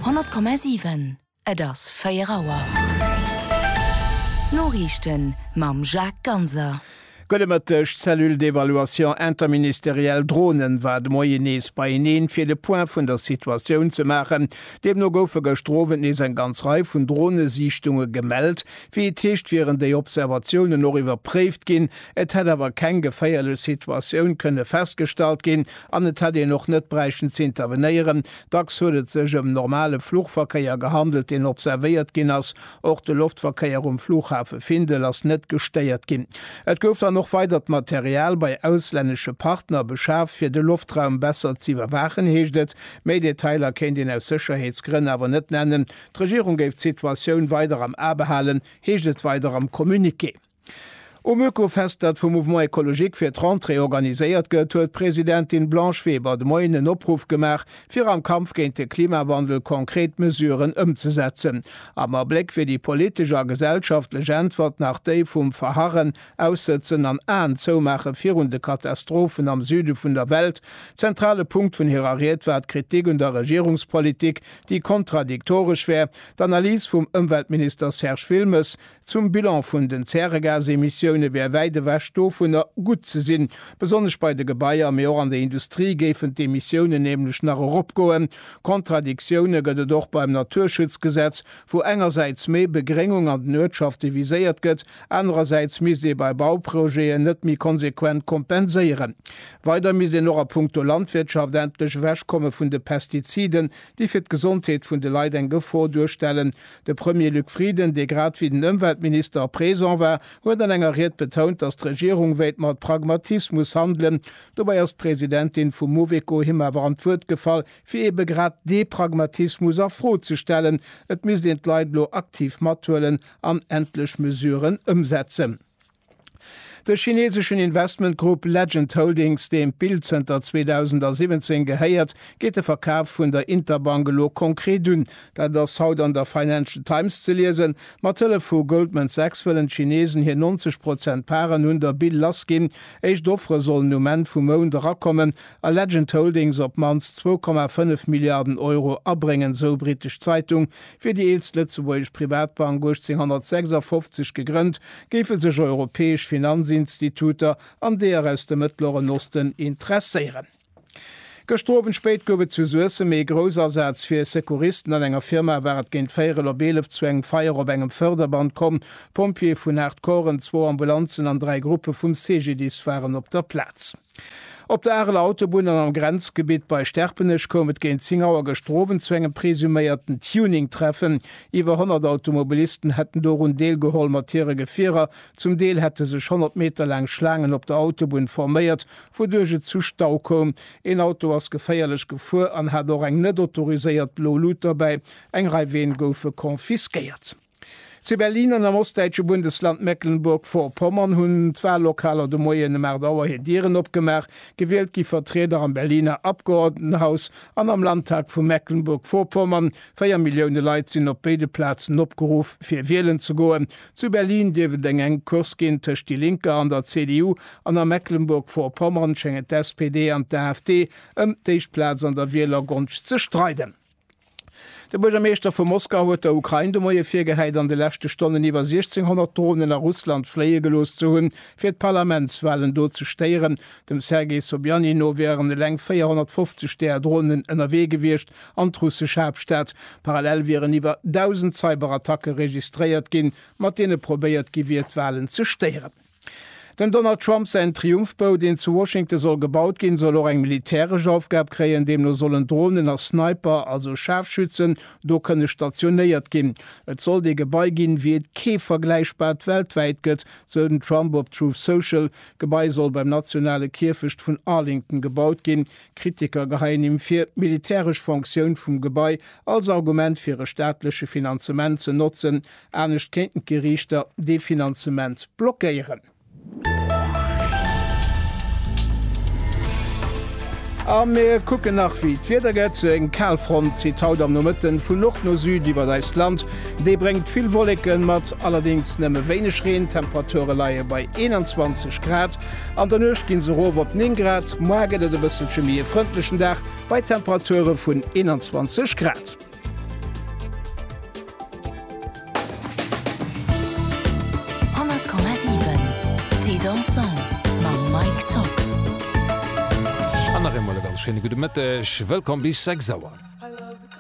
100,7 Et ass 4 Auer. D'Noriichten mam Jacques Ganser. Gudde Mëtteg. D'Cellule d'évaluation interministérielle Dronen war de Moien nees beieneen, fir de Point vun der Situatioun ze maachen. Deemno goufe gëschter Owend nees eng ganz Rei vun Dronesiichtunge gemellt. Wéi et heescht, wieren déi Observatiounen och iwwerpréift ginn. Et hätt awer keng geféierlech Situatioun kënne festgestallt ginn, An et hätt een och net bräichten z'intervenéieren. Dacks huet et sech ëm normale Fluchverkéier gehandelt, deen observéiert ginn ass. Och de Loftverkéier um Flughafe Findel ass net gestéiert ginn. Et gouf dann och weidert Material bei auslännesche Partner beschaf, fir de Loftraum besser z'iwwerwaachen, heescht et. Méi Detailer kéint een aus Sécherheetsgrënn awer net nennen. D'Regierung géif d'Situatioun weider am A behalen, heescht et weider am Communiqué. Um Oekofest, dat vum Mouvement Ecologique fir d'Rentrée organiséiert gëtt, huet d'Presidentin Blanche Weber de Moien en Opruff gemaach, fir am Kampf géint de Klimawandel konkret Mesuren ëmzesetzen. Am Abléck wier déi politesch a gesellschaftlech Äntwert nach déi vum Verharren, Aussëtzen an Aen zoumaache virun de Katastrophen am Süde vun der Welt. Zentrale Punkt vun hirer Ried war d'Kritik un der Regierungspolitik, déi kontradiktoresch wär. D'Analys vum Ëmweltminister Serge Wilmes, Zum Bilan vun den Zäregasemissioune wär wäit ewech dovunner, gutt ze sinn. Besonnesch bei de Gebaier, mee och an der Industrie géifen d'Emissiounen nämlech nach eropgoen. Kontradiktioune gëtt et och beim Naturschutzgesetz, wou engersäits méi Begréngung an den Uertschafte viséiert gëtt, anerersäits misst ee bei Bauprojeten net méi konsequent kompenséieren. Weider misst een och a puncto Landwirtschaft endlech ewechkomme vun de Pestiziden, déi fir d'Gesondheet vun de Leit eng Gefor duerstellen. De Premier Luc Frieden, dee grad ewéi den Ëmweltminister présent war, huet an enger Ried betount, datt d'Regierung wéilt mat Pragmatismus handelen. Dobäi ass d'Presidentin vum Mouveco him awer an d'Wuert gefall, fir eebe grad dee Pragmatismus a Fro ze stellen. Et misst een d'Leit elo aktiv mathuelen an endlech Mesuren ëmsetzen. De chineseschen Investmentgrupp Legend Holdings, deem d'Bild zënter 2017 gehéiert, geet de Verkaf vun der Interbank elo konkret un. Dat ass haut an der Financial Times ze liesen. Mat Hëllef vu Goldman Sachs wëllen d'Chinesen hir 90 Prozent Paren un der Bill lassginn. Éischt Offere sollen um Enn vum Mount erakommen a Legend Holdings op d'mannst 2,5 Milliarden Euro abréngen, esou brittesch Zeitung. Wier déi eelst lëtzebuergesch Privatbank 1856 gegrënnt, géife sech europäesch Finanzinstituter an deeër aus dem Mëttleren Osten interesséieren. Gëschter Owend spéit gouf et zu Suessem ee Groussasaz fir Secouristen. An enger Firma war et géint véierel op eelef zu engem Feier op engem Fërderband komm. Pompjeeë vun Haardcoren, zwou Ambulanzen an dräi Gruppe vum CGDIS waren op der Plaz. Op der Areler Autobunn an am Grenzgebitt bei Sterpenech koum et géint 10 Auer gëschter Owend zu engem presuméierten Tuning-Treffen. Iwwer 100 Automobilisten hätten dorun deelgeholl mat hire Gefierer. Zum Deel hätte sech 100 Meter laang Schlaangen op der Autobunn forméiert, wouduerch et zu Stau koum. Een Auto ass geféierlech gefuer an hat och eng net autoriséiert blo Lut dobäi. Eng Rei Ween goufe confisquéiert. Zu Berlin an am ostdäitsche Bundesland Mecklenburg-Vorpommern hunn d'Wallokaler de Moien ëm 8 Auer hir Dieren opgemaach. Gewielt gi Vertrieder am Berliner Abgeordnetenhaus an am Landtag vu Mecklenburg-Vorpommern. Véier Millioune Leit sinn op béide Plazen opgeruff, fir wielen ze goen. Zu Berlin dierft et eng enk Course ginn tëscht Die Linke an der CDU an a Mecklenburg-Vorpommern schéngen d'SPD an d'AfD ëm d'éischt Plaz an der Wielergonscht ze streiden. De Buergermeeschter vu Moskau huet der Ukrain de Moie virgehäit, an de leschte Stonnen iwwer 1,600 Dronen a Russland fléie gelooss ze hunn, fir d'Parlamentswalen do ze stéieren. Dem Sergei Sobyanin no wieren eleng 450 där Dronen ënnerwee gewiescht an d'russesch Haaptstad. Parallel wieren iwwer 1.000 Cyberattacke registréiert ginn, mat deene probéiert gi wier, d'Walen ze stéieren. Dem Donald Trump säin Triumphbou, deen zu Washington soll gebaut ginn, soll och eng militäresch Aufgab kréien. Deemno sollen Dronen a Sniper, also Schaarfschützen, do kënne stationéiert ginn. Et sollt ee Gebai ginn, wéi et kee vergläichbart weltwäit gëtt, sou den Trump op Truth Social. D'Gebai soll beim nationale Kierfecht vun Arlington gebaut ginn. Kritiker geheien him vir, d'militäresch Fonctioun vum Gebai als Argument fir e staatleche Finanzement ze notzen, Anescht kéinten d'Geriichter dee Finanzement blockéieren. A mir kucken nach, wéi d'Wieder gëtt. Eng Kalfront zitt haut am Nomëtten vun Nord no Süd iwwert eist Land. Déi bréngt vill Wolleken mat, allerdéngs nëmme wéineg Reen. D'Temperature leie bei 21 Grad. An der Nuecht gi se erof op 9 Grad. Moar gëtt et e bësselche méi e frëndlechen Dag bei Temperature vun 21 Grad. An nach eemol e ganz schéine gudde Mëtteg. Wëllkomm bis 6 Auer.